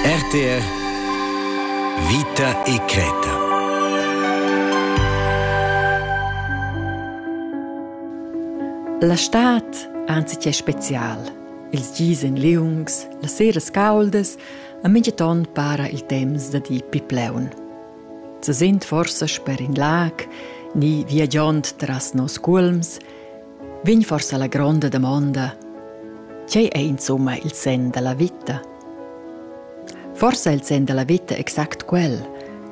RTR Vita e Creta La stad anzi che special. Ils gis en liungs, las seras cauldas, a mintgaton para il temps da di pipleun. Ze sind forsa sper in lag, ni viagiond tras nos culms, Vegn forsa la gronda damonda, tgei ei insumma il senn dalla vita? Forsa il senn dalla vita exact quel,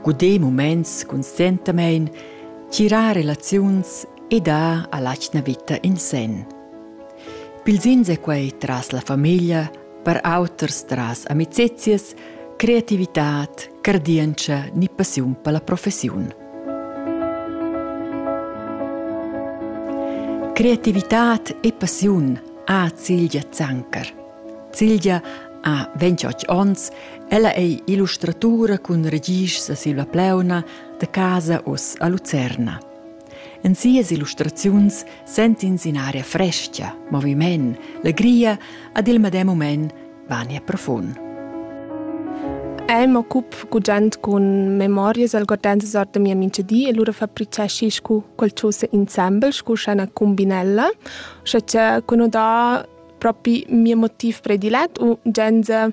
guder muments conscientamein, tgirar relaziuns e dar all'atgna vita in senn. Pils ins è quei tras la famiglia, per auters tras amicizias, creativitad, cardientscha ni passiun per la professiun – Creativitad e passiun ha Cilgia Zanker. Cilgia ha 28 onns, ella è illustratura cun regists a Silva Pleuna da casa oz a Lucerna. En sias illustraziuns sent'ins in aria fresca, moviment, legria ad il medem moment Vania profund. Ei m'occup gugent cun memorias algordenses ord da mia mintgadi e lura fabrizeschi scu qualchosa insembel scu scena cumbinella, scha cha cun dà propi mia motiv predilet u genza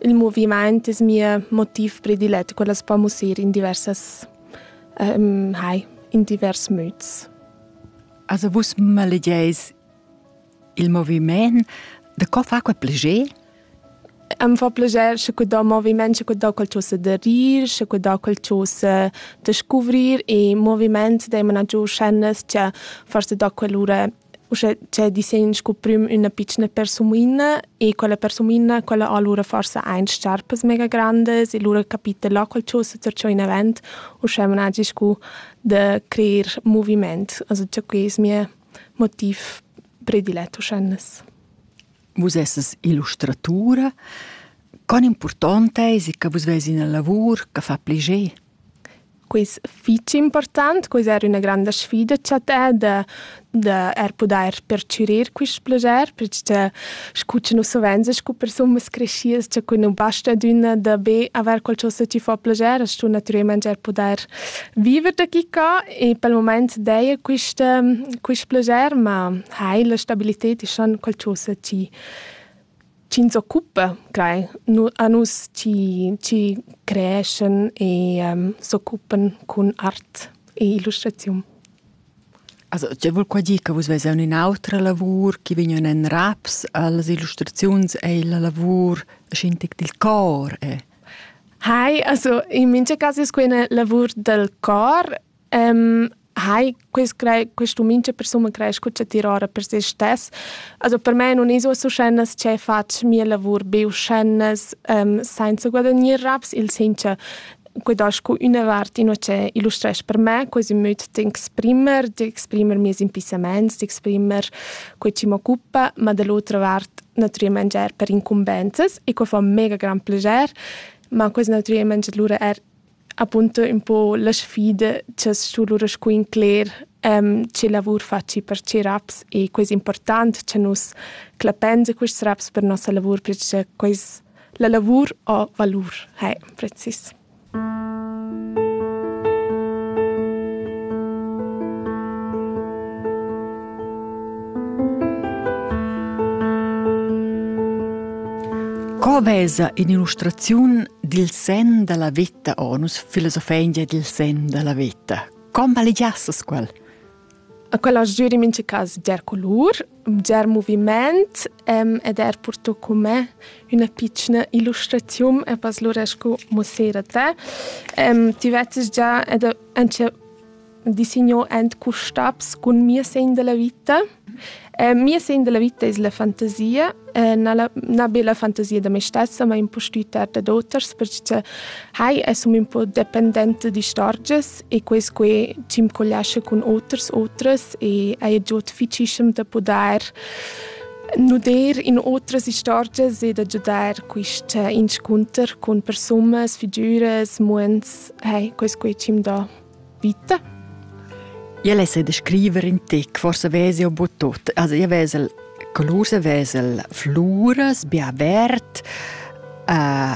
il movimaint es mia motiv predilet, quella s'po mussir in diversas um, hai, in divers müts. Also vus malegeis Il moviment de co fa quel pleger? Am fa pleger sche que da moviment, sche que da quel cho se de rir, sche que da quel cho se de scuvrir e moviment da imana giù schennes che forse da quell'ora uschè c'è di sen sco prüm üna piccina persumoina e quella persumoina quella ha lura forse ein scarpas mega grandes e lura capita là quel cho se zer in avant uschè managi sco de creer moviment also che que es mia motiv predilet uschennes. Vus esses illustratura. Con important eis che vus veis ina lavur che fa pliger? Quis fitg important, quis era üna granda sfida cha te da da er pudair perchürir quist plager, perche scu cha nus savenz scu persunas crescias cha cun nu basta adüna da be avair qualchosa chi fa plager, as stu natüralmaing er pudair Viver da chi ca e pel mumaint d'eir quist quist plaschair, ma hai la stabilited ischan qualchosa chi chi'ns occupa clai nu a nus chi chi creeschan e s'occupan cun art e illustraziun. Also tge vul qua dir che vus ves aunc in'autra lavur che vegnan en raps als illustraziuns ei la lavur schin tic dil cor e Hai, also in mincha cas es quai üna lavur dal cor. Ehm, hai, quest crei quest um, mincha persun creescha cun chattir ora per se stess. Also per me nun es uossa uschennas che fatsch mia lavur be uschennas, ehm, sainza guadagnir raps, il sainza guadagn cu üna vart inua che illustresch per me quasi ün möd d'exprimer, d'exprimer mieus impissamaints, d'exprimer quai chi m'occupa, ma da l'otra vart nutrì mangiar per incumbensas e quai fa mega gran plascher, ma quest nutrì mangiar lura er appunto un po la sfida che su lura scu incler um, che lavur faci per che raps e quest important che nus clapenza quest raps per nossa lavur perché quest la lavur ha valur, hai precis. Co vesa in'illustraziun dil sen dalla veta onus filosofengia dil sen dalla veta? Com malegiassas quel? A quella jür in mincha cas bger culur, bger muvimaint ed eir purto cun me üna pitschna illustraziun e pas lura scu mussera d'te. Ti vezzast già ed auncha disigno ant custabs cun mia segn da la vita. Mia segn da la vita es la fantasia, na be la fantasia da me stessa, ma ün po stüt art dad oters perche hai e sun ün po dependenta d'istorgias e quei team collascha con oters otras e ha giut ficischem da poder nuder in otras istorgias e da giudar quist eh, inscunter con persunas, figüras, muents, hey, quest quei team da vita. Io lesse de scrivere in te, forse vesi o bottot, also io vesel color se vesel fluras, bia vert, uh,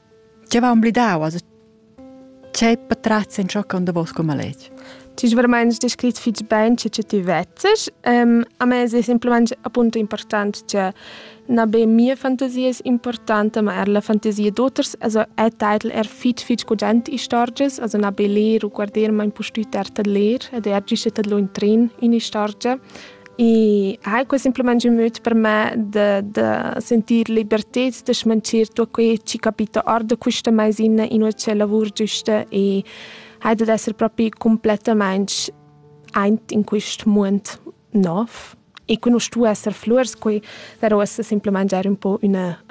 Tge va omblidau? Also, Tgei patratgs entschoccan davos con maletg? Tu hai veramente descrit fitg bene che ti vezzes. Um, a me è semplicemente appunto importante che non be mia fantasia è importante, ma er la fantasia d'auters. Also è titel er fitg fitg cogent istorgias, also non be leer o guardar, ma in po stuer tar leer ed er gist tar in tren in istorgia. E ha quei semplamein giu möd per me da, da sentir libertad, da schmanchir tutto quei che capita ord da questa maisina in ucce lavur giusta e ha da essere proprio completamente eint in questo mondo nov. E que non stu esser flurs, quei darò esse semplamein già un po' una,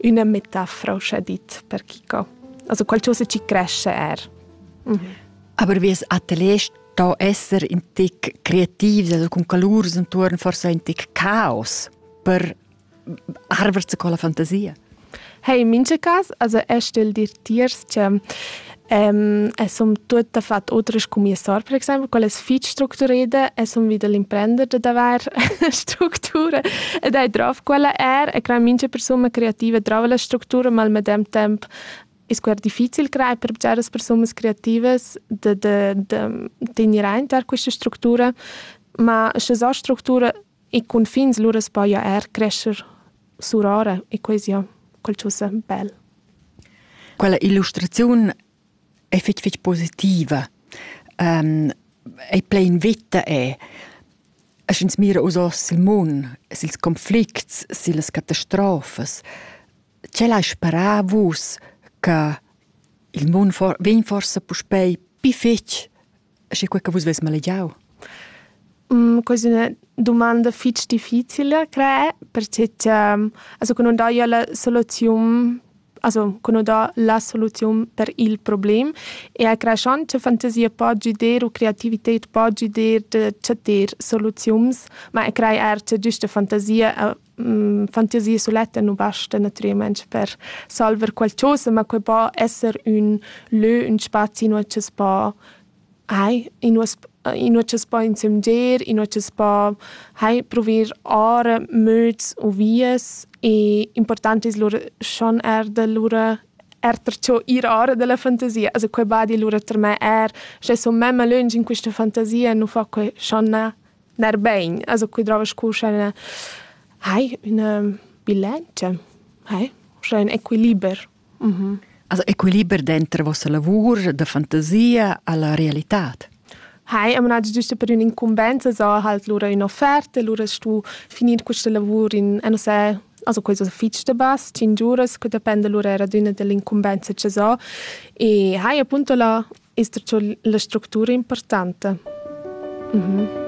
una metafora, scha dit, per chi co. Also qualcosa ci cresce er. Mm -hmm. Aber wie das Atelier da esser in tic creativ, da cun calurs intuorn forsa in tic caos per arverse con la fantasia. Hey, in mincha cas, also er stell dir tiers che Um, es som tutta fat otras come sor, per esempio, quelle fitch structurate, es som wieder l'imprender da davar strutture ed hai drauf quella er e crea mincha persona creativa drova la struttura, ma al medem temp E scuer difficil crai per bgeras persunas creativas de, de, de tenir aint questa structura, ma sche sa structura e confins lura spoia er crescer surora e quasi ja, quel tschussa bel. Quella illustraziun è fitg fitg positiva. Um, è plein vita è. E sch'ins mira us oss il mund, sils conflicts, sils catastrofes, Tgel hai sparà vus che il mund for vegn forsa puspei pli fetg sche quei che vus veis malegiau? Questa è una domanda fitg difficile, credo, perché also, che non daja la soluzione also, che non dà la soluzione per il problem e a creschond che fantasia po giuder o creativität po giuder da chattar soluziuns, ma e crei er che giusta fantasia fantasia suletta nu basta natüralmaing per salver qualchosa, ma que po esser ün lö, ün spazi inua chi's po hai, inua inua chi's po insömgir, inua chi's po hai pruver ora möds u vias e important es lura schon eir da lura erter cho ir ora da la fantasia. Also que badi lura ter me eir, sche sun memma lönch in quista fantasia, nu fa que schon na Ner bein, also quei drova scu scha üna hai üna bilantscha, hai, scha ün equiliber. Mhm. Also equiliber denter vossa lavur da fantasia alla realitad. Hai, am nagio giusto per ün'incumbenza, so halt lura ün'offerta, lura stu finir questa lavur in, eh, non so, also questo fitg da bass, 5 uras, che depende lura era d'üna dell'incumbenza che so. E hai appunto la, ist dazu la struttura importante. Mhm.